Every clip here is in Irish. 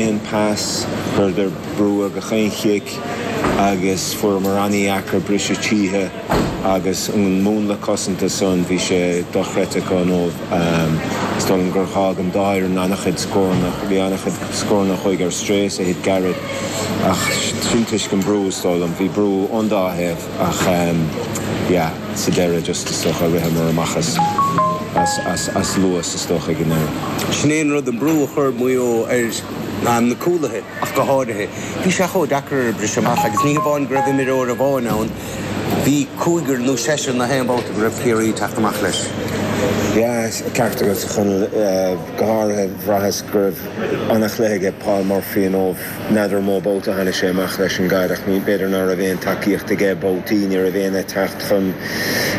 aon pass, chuireadar brú ar gach aon chic agus fuaireamar an-dheacair briseadh tríthi agus an múnla cosanta san bhí sé dochreidte acu inniu is dóigh liom gur dhágh an dá fhoireann an-chuid scóranna, bhí an-chuid scóranna a chuaigh ar strae is a thit gairid ach sin toisc an brú is dóigh liom, bhí brú ón dá thaobh. Ach yeah, sa deireadh just is dócha ritheamar amach as luas is dócha ag an deireadh. Sin é an rud, an brú a chuir Maigh Eo ar na cúlaithe ach go háirithe. Bhí sé chomh deacair briseadh amach agus ní hamháin go raibh imreoir amháin ann, bhí cúigear nó seisear nach aon babhta go raibh Ciarraí ag teacht amach leis. Yeah, ceart agat a Chonaill. Go háirithe bhraitheas go raibh an-chluiche aige Paul Murphy inniu. N'fheadar mó babhta a tháinig sé amach leis an gcaid, ach b'fhéidir ná raibh aon tacaíocht aige babhtaí, ní raibh éinne ag teacht chun,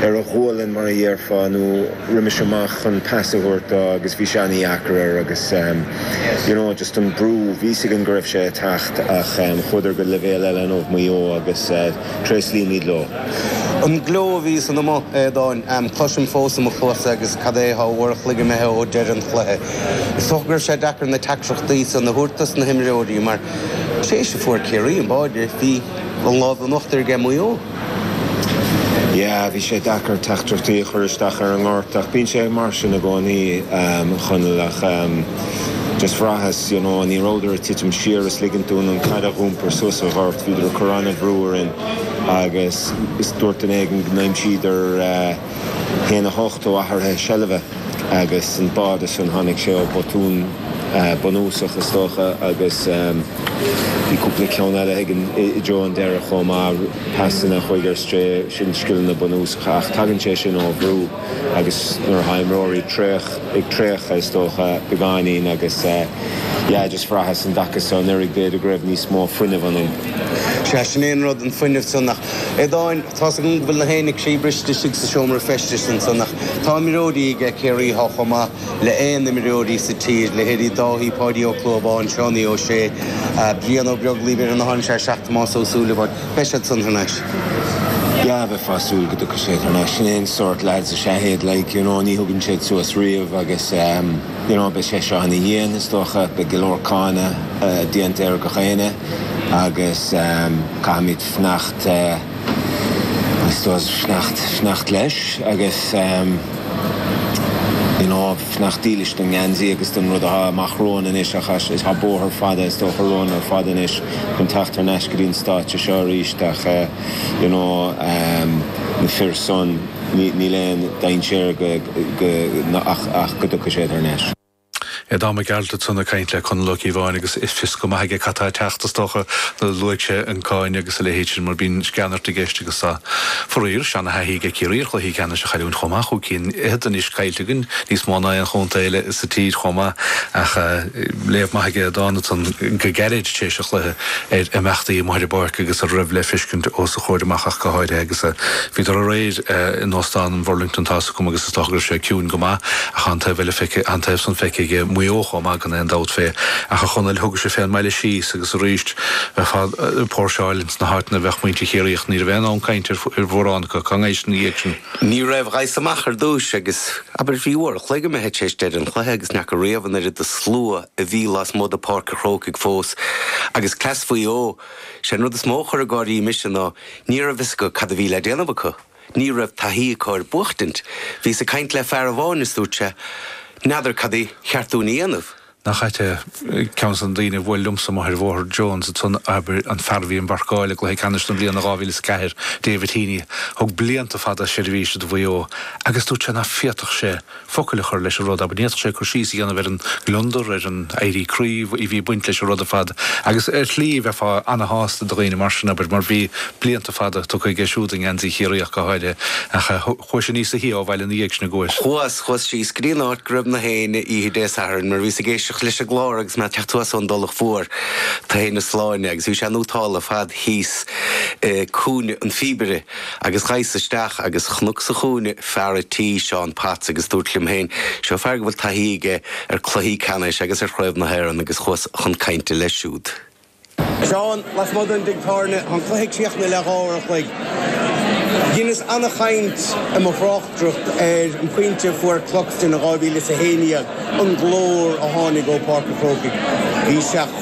ar a ghualainn mar a dhéarfá, nó roimis amach chun pas a thabhairt dó agus bhí sé an-dheacair air agus you know just an brú, bhí's againn go raibh sé ag teacht ach chuadar go leibhéal eile inniu Maigh Eo agus tréaslaímid leo. An gleo a bhí ansan amuigh, a Aodáin, em, cloisim fós i mo chluasa agus cad é tá uair a chloig imithe ó deireadh an chluiche. Is dócha go raibh sé deacair na teachtaireachtaí san a thabhairt dos na himreoirí mar, tar éis a fuair Ciarraí an báide, bhí an lámh in uachtar aige Maigh Eo. Yeah, bhí sé deacair teachtaireachtaí a chur isteach ar an ngort ach bíonn sé mar sin i gcónaí, em, a Chonaill ach, em, just bhraitheas, you know, ní rabhadar ag titim siar is ligint dúinn an caid a dh'iompar suas an ghort, bhíodar ag cur an-bhrú orainn. agus is dúirt duine éigin go n-aimsíodar 1-8 ó athruithe seilbhe agus an báide san tháinig sé ó botún bunúsach is dócha agus bhí cúpla ceann eile againn i dtreo an deiridh chomh maith, pasanna a chuaigh ar strae, sin scileanna bunúsacha ach tagann sé sin ó bhrú. agus nuair atá imreoirí ag traochadh is dócha beagáinín agus yeah just bhraitheas an dtaca so anuraidh b'fhéidir go raibh níos mó fuinnimh ionainn. Sea, sin é an rud, an fuinneamh san ach, Aodáin, tá's agam go bhfuil nach éinne croíbhriste istigh sa seomra feistis ansan ach tá imreoirí aige Ciarraí atá chomh maith le aon imreoirí sa tír, leithéidí Dáithí, Páidí Ó Clúmháin, Seánie Ó Sé, Brian Ó Beaglaoich, Mhuireann Ó hAinm, sea, 7 Tomás Ó Súilleabháin. Beidh siad san thar n-ais. Yeah, bheifeá ag súil go dtiocfaidh sé thar n-ais. Sin é an sórt lads is ea iad, like, you know, ní thugann siad suas riamh agus, um, you know, beidh sé seo an-dhian, is dócha, beidh go leor cáineadh déanta ar gach éinne agus, um, caithfimid fanacht, uh, I suppose, fanacht, fanacht leis agus, um, you know, fanacht dílis don ngeansaí agus don rud atá amach romhainn anois ach tá bóthar fada, is dócha, romhainn ar fad anois. chun teacht thar n-ais go dtí an stáitse seo arís ach you know na fir san níl aon dainséar ach go dtiocfaidh siad thar n-ais. Aodán Mac Gearailt san ag caint le Conall Ó Cíobháin agus fios go maith aige cad tá ag teacht is dócha nó luaigh sé an cáineadh agus a leithéid sin mar bíonn sceanairt i gceist agus tá faraor seana-thaithí ag Ciarraí ar chluichí ceannais a chailliúint chomh maith chúig cinn fhichead anois caillte againn níos mó ná aon chontae eile sa tír chomh maith ach léamh maith aige Aodán ansan go gairid tar éis an chluiche ar imeachtaí amuigh ar an bpáirc agus a raibh le feiscint os a chomhair amach ach go háirithe agus bhíodar aréir in Óstán an Bhurlington Tá's agam agus is dócha go raibh sé ciúin go maith ach tá an taobh eile feicthe tá an taobh san feicthe aige Maigh Eo chomh maith gan aon dabht fé ach a Chonaill thugais-se fén mbaile síos agus arís bheifeá ag póirseáil ins na háiteanna a bheadh muintir Chiarraí ach ní raibh aon fhonn cainte ar mhórán acu cá ngabhais ina dhiaidh sin. Ní raibh Ghabhas amach ar dtúis agus, abair, bhí uair a chloig imithe tar éis deireadh an chluiche agus n'fheaca riamh an oiread de shlua a bhí lasmuigh de Pháirc a' Chrócaigh fós. Agus cleas Mhaigh Eo, sé an rud is mó a chuir ag gáirí mise ná ní raibh fhios acu cad a bhí le déanamh acu. Ní raibh taithí acu ar buachtaint. Bhíos ag caint le fear amháin is dúirt sé, N'fheadar cad ba cheart dúinn a dhéanamh? Nach ait é? Ceann de na daoine a bhuail liomsa amuigh ar Bhóthar Jones ansan, abair, an fear a bhí im mharcáil i gCluiche Ceannais na bliana 2004, David Heaney, thug blianta fada seirbhíse do Mhaigh Eo, agus dúirt sé ná féadfadh sé focail a chur leis an rud abair, ní fhéadfadh sé cur síos a dhéanamh ar an ngliondar, ar an éirí croí, a bhí ag baint leis an rud ar fad. Agus ar shlí, bheifeá ana-shásta do dhaoine mar sin, abair, mar bhí blianta fada tugtha aige siúd i ngeansaí Chiarraí ach go háirithe, ach chuais níosa shia ó bhaile ina dhiaidh sin an gcuais. Chuas síos go dtí an áit go raibh nach éinne oíche Dé Sathairn mar bhíos ag éisteacht leis an gclár agus mé ag teacht suas ón dTulach Mhór, Toigh na Sláine, agus bhí sé in Uthtal ar fad thíos i gCúinne an Phíobaire agus ghabhas isteach agus chonac sa chúinne fear a' tí, Seán Potts, agus dúrt liom féin, seo fear go bhfuil taithí aige ar chluichí ceannais agus ar Chraobh na hÉireann agus chuas chun cainte leis siúd. Seán, lasmuigh den dtigh tábhairne, tá an cluiche críochnaithe le dhá uair an chloig. Dheineas ana-chaint i mo thráchtaireacht ar an bpointe a fuair Cluxton in 2011, an glór a tháinig ó Pháirc an Chrócaigh. Bhí sé chomh.